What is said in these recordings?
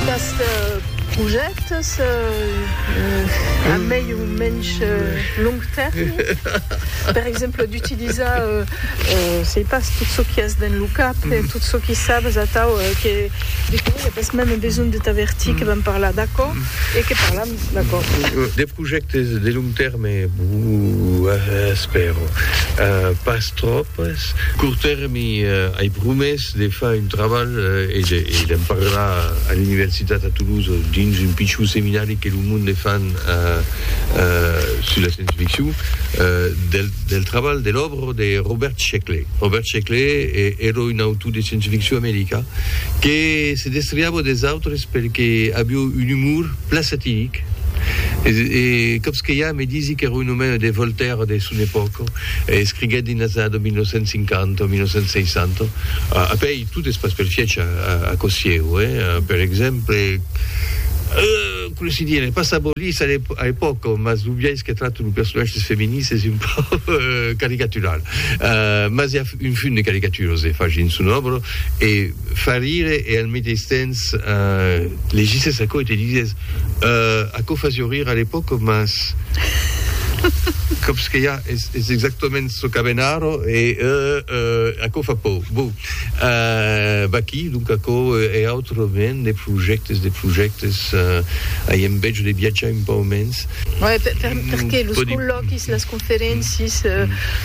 Qu'este projècte se a mei o mensh long tèrmi, per exemple d'utilizar, sei pas, tot çò qui es dens lo cap e tot çò qui sabes atau que de qué i a pas meme besonh de t'avertir que vam parlar d'aquò e que parlam d'aquò. De projèctes de long tèrme, bon, espèro pas tròpes. Cort tèrmi, ai promés. de far un trabalh e d'en parlar a l'universitat a Toulouse dins un pichon seminari que lo monde fan sus la science-ficcion, del trabalh, de l'òbra de Robert Sheckley. Robert Sheckley èra un autor de science-ficcion american que se destriava des autres pel que aviá un umor plan satiric e còps que ja me disi qu'èra un omèna de Voltaire de son epòca. Escriguèt dins las annadas 1950 o 1960, a pèir tot es pas pel fièch a Cossièu, per exemple, coma se dièra, pas sabolís a l'epòca, mas lo biais que trata lo personatge dels feminins es un pauc caricatural. Mas i a un fum de caricaturas e fach dins son òbra e fa rire e al meteis temps te legissès aquò e te disès, Aquò fasió rir a l'epòca, mas còps que ja es exactament çò qu'avèn ara e aquò fa paur. Bon, vaquí donc aquò e autres mens de projèctes, de projèctes, ai enveja de viatjar un pauc mens. Perqué los collòquis, las. Ferencis,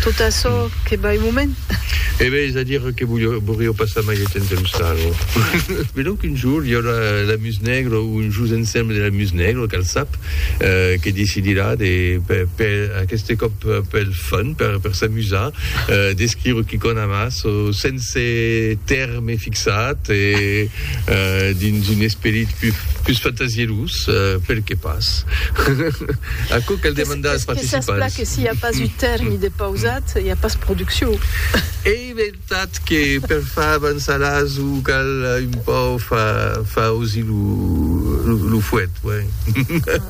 tot açò que vai moment. E ben, es a dire que volió passar mai de temps amb Saro. Be donc un jour i aurà la Muse Nègra o un jus ensemble de la Muse Nègra, cal sap, que decidirà de, per aqueste còp pel fun, per s'amusar, d'escriure quicòna mas, o sens. Se tèrme fixat e dins un esperit pus fantasierós, perqué pas? Aquò cal demandar als participants. Qu'es pas que s'i a pas un tèrme de pausat, i a pas produccion. Ei vertat que per far avançar l'aso cal un pauc far ausi lo fuet, ben.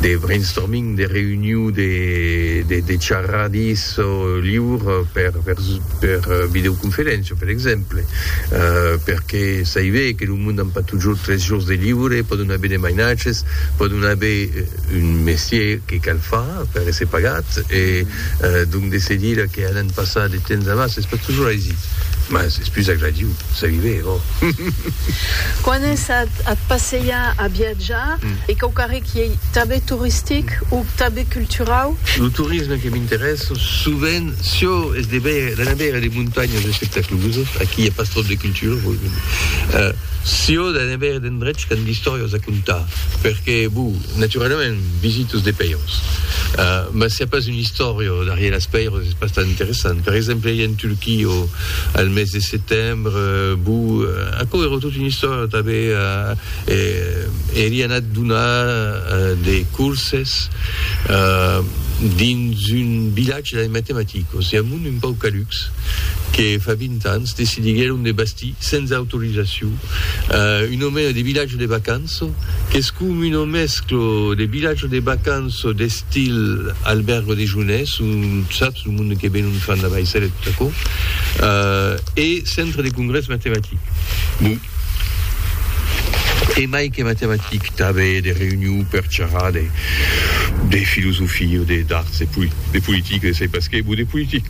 de brainstorming, de reüniu, de charradís liur per videoconferéncia, per exemple, perque saive que lo mond an pas totjorn tres jors de liure, pòdon aver de mainatges, pòdon aver un mestier que cal far per èsser pagat e donc de se dire que alan passar de temps a mas es pas totjorn aisit, mas es pus agradiu, saive, òh! Quan es at passeiar a Ja, e quauquarrec i ei tanben toristic o tanben culturau? Lo torisme que m'interèssa sovent, çò es de veire, d'anar veire de montanhas espectaculosas, aquí i a pas tròp de cultura, voi me dir, çò d'anar veire d'endrechs qu'an d'istòrias a contar, perque, bo, naturalament, visito es de pèiros, mas s'i a pas una istòria darrièr las pèiros es pas tan interessant. Per exemple, ei en Turquia al mes de setembre, bo, aquò èra tota una istòria, tanben. Èri anat donar de corses dins un vilatge de matematicos e amont un pauc calucs que fa 20 ans decidiguèron de bastir sens autorizacion un omena de vilatge de vacanço qu'es com una mesclo de vilatge de vacanço d'estil albèrgo de jounès o saps lo monde que venon fan la vaissèla e tot aquò e centre de congrès matematic. E mai que matematic, tanbe de reunion per charrar de de filosofia o de d'arts, de poli de politica, de sai pas qué, bon de politic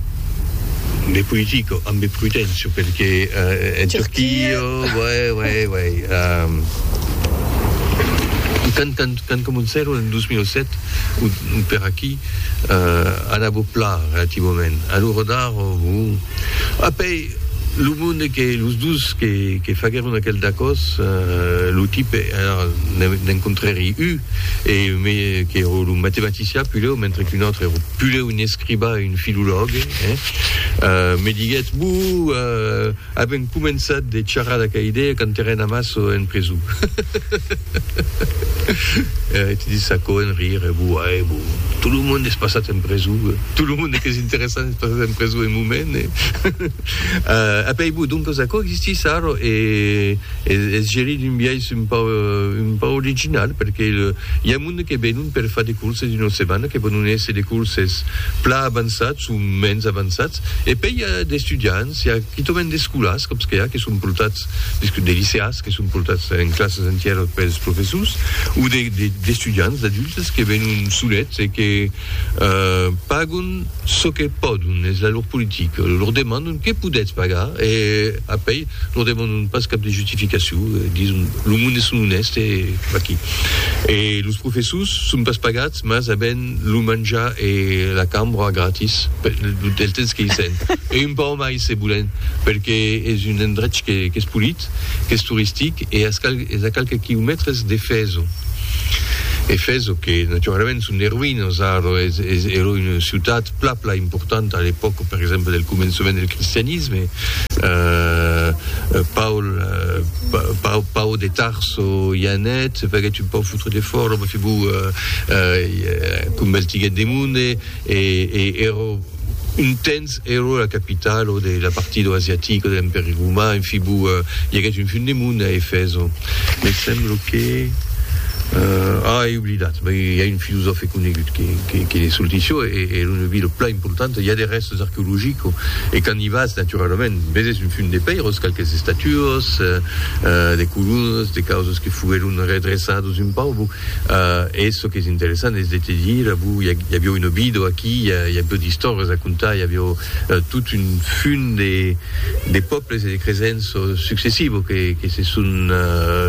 de politica ambe prudencia perque en Turquia, uè, uè, uè, ehm, quand quand quand comencèron en 2007 o o per aquí, eh, anava plan relativament, alora d'ara, bon, apé, Lo monde que los dos que faguèron aquel dacòs, lo tipe èra d'en contrèri u e qu'èra lo matematician pulèu mentre qu'un autre èra pulèu un escribà e un filològue, me diguèt, Bu, avèm començat de charrar d'aquela idèa quand èra en amasso en preson. Era ti de s'acoenrir, Bu, ae, bu, tot lo monde es passat en preson, tot lo monde qu'es interessant. Pas en preso en moment, eh? A pei bo, doncas aquò existís sarro e es gerit d'un biais un pauc, un pauc original, perque i a monde que venon per far de corses d'una setmana, que pòdon èsser de corses plan avançats o mens avançats, e pei i a d'estudiants, i a quitament d'escolas, còps que i a, que son portats, de liceas, que son portats en classas entièras pels professors, o d'estudiants, d'adultes, que venon solets e que, Pagon çò que pòdon, es la lor politica. Lor demandon, que podètz pagar? E apèi lor demandon pas cap de justificacion, dison, lo monde es son onèst e vaquí. E los professors son pas pagats, mas avèn lo manjar e la cambra gratis del temps que i sèn, e un pauc mai se volèn, perque es un endrech qu'es polit, qu'es toristic e as cal Es a qualques quilomètres de Fèzo. E Fèzo que naturalament son de roïnas ara, èra una ciutat pla pla importanta a l'epòca per exemple del començament del cristianisme. Paul Paul de Tarso i anèt, se faguèt un pauc fotre de fòra, mai feblor convertiguèt de monde e èra Un temps ero la capitalo de la partidor asiatica de l'Empèri Roman, en fi, bou, i aguèt un fin de monde a Efèso. Me semblo que, ah, ei oblidat, bèi, i a un filosòfe conegut que, que, que ne solti çò, e, e l'una vila plan importanta, i a de rèstes arqueologico, e quand i vas, naturalament, veses un fin de pèiros, qualques estatuos, de colonas, de causas que foguèron redreçados un pauc, bou. E çò qu'es interessant es de te dire, a vos, i avió un obido aquí, i avió d'istòrias a contar, i avió tot un fum de pòbles e de cresents successivo que se son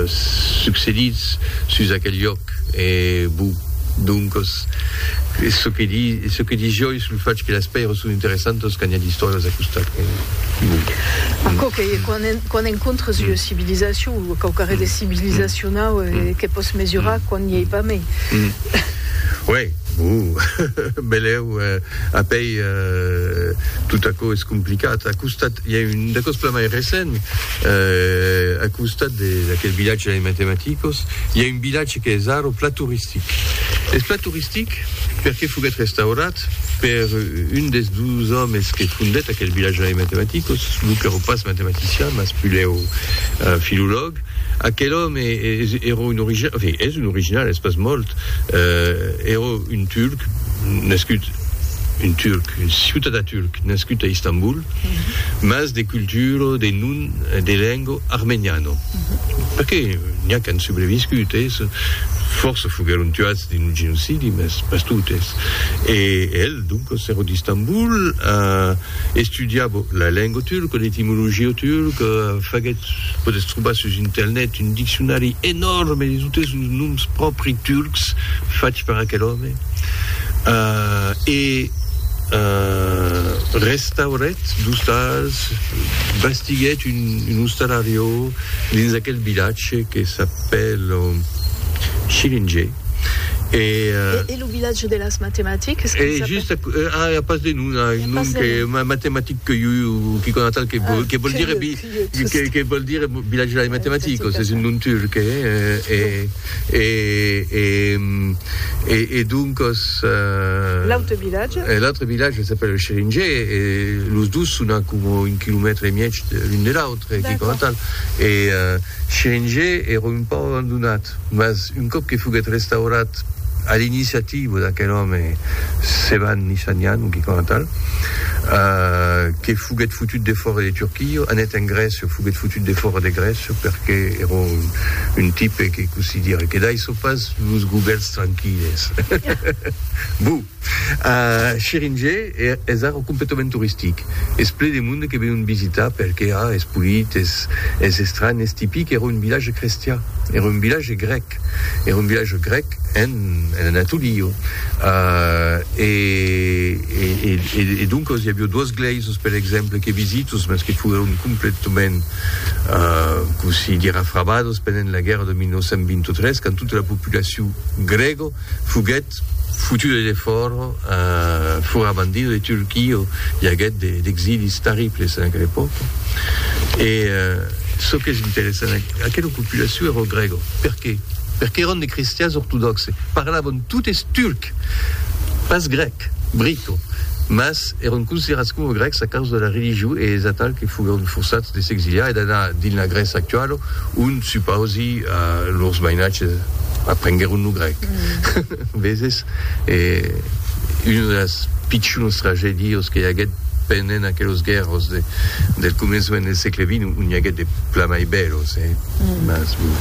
succedits sus aquel lloc. E bon, doncas, es çò que dis, es çò que dis joi sul fach que las pèiras son interessantas quand i a d'istòrias a costat. Bon. Aquò qu'ei, e quan Quand encontres ua civilisacion o quauquarren de civilisacionau que pòs mesurar quand n'i ei pas mai. Uèi, uh, belèu, apèi tot aquò es complicat. A costat, i a un d'aquò's plan mai recent, a costat d'aquel vilatge dei matematicos, i a un vilatge qu'es ara plan toristic. Es plan toristic perqué foguèt restaurat, Fondèt per un des dus òmes que fondèt aquel vilatge de matematicos, lo qu'èra pas matematician, mas pulèu filològ. Aquel òme èra un original, en fin, es un original, es pas molt, èra un turc nascut, un turc, un ciutadà turc nascut a Istanbul, mas de cultura, de nom, de lenga armeniana. Perqué n'i a qu'an subreviscut, es, fòrça foguèron tuats dins lo genocidi, mas pas totes. E el, doncas, èra d'Istambul, a estudiat la lenga turca, l'etimologia turca, faguèt, podètz trobar sus internet, un diccionari enòrme de totes los noms pròpri turcs fach per aquel òme. e restaurèt dus tals, bastiguèt un, un ostalariò dins aquel vilatge que s'apèl Schillinger, e, e lo vilatge de las matematiques e just a, a, a pas de nom, a un nom que matematic que, qui cona tal que, que vol dire Que vòl dire Village de la Matematicos? Es un nom turc, eh? E doncos... L'autre vilatge? L'autre vilatge s'apèla Scheringe, e los dos son a coma un quilomètre e mièg l'un de l'autre, quicòm coma tal. E Scheringe èra un pauc abandonat, mas un còp que foguèt restaurat, A l'iniciativa d'aquel òme Sevan Nişanyan, un quicòna tal, que foguèt fotut defòra de Turquia, anèt en Grècia, foguèt fotut defòra de Grècia perque èra un tipe que cosidira que daissò pas los gubèls tranquilles. Buh! Scheringe es ara completament toristic, es ple de monde que venon visitar perque a es polit, es estranh, es tipic, era un vilatge crestià, era un vilatge grèc, era un vilatge grèc en Anatolio e doncas i avió duas glèisas per exemple que visitos mas que foguèron completament cossí dire afrabadas pendent la guèrra de 1923 quand tota la populacion grèga foguèt Foutu de defòra, fora bandido de Turquia, i aguèt d'exilis terribles en aquela epòca. E çò qu'es interessant, aquela populacion èra grèga. Perqué? Perqué èran de cristians ortodòxe, parlavan totes turc, pas grèc, brico, mas èran considerats coma grècs a causa de la religion e es atal que foguèron forçats de s'exiliar e d'anar dins la Grècia actuala ont Supausi lors mainatges aprenguèron lo grèc, veses, e una de las pichunas tragedias que i aguèt pendent aquelos guèrras del començament del sègle vint, o n'i aguèt de plan mai bèlas, eh? Mas bon.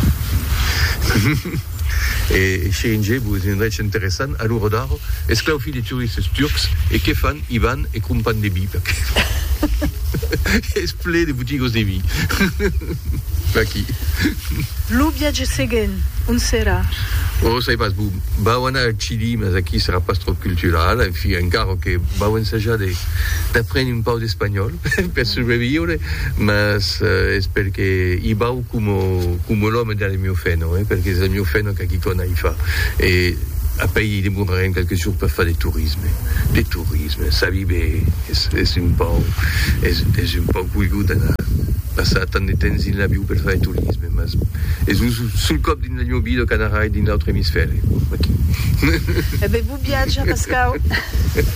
E Şirince, vos semblaretz interessant, a l'ora d'ara, esclaufi de turistes turcs, e qué fan? I van e crompan de vi, perqué es ple de botigas de vi. Vaquí. Lo viatge seguent, ont serà? Ò, sai pas, bon, vau anar al Chili, mas aquí serà pas tròp cultural, en fin, encara que vau ensajar de, d'aprendre un pauc d'espanhòl per subreviure, mas es per que i vau coma, coma l'òme de la Miofeno, eh, per que es la Miofeno qu'a qui cona i fa, e après i demorarem quelques jours per far de tourisme, de tourisme, sabi be. Es un pauc, es un pauc coigut d'anar passar tant de temps dins l'avion per far de torisme, mas es lo sol còp dins la nho vida qu'anarai dins l'autre emisfèri, aquí. E ben, bon viatge, Pascau.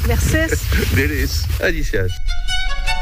Mercés. De res. Adicias.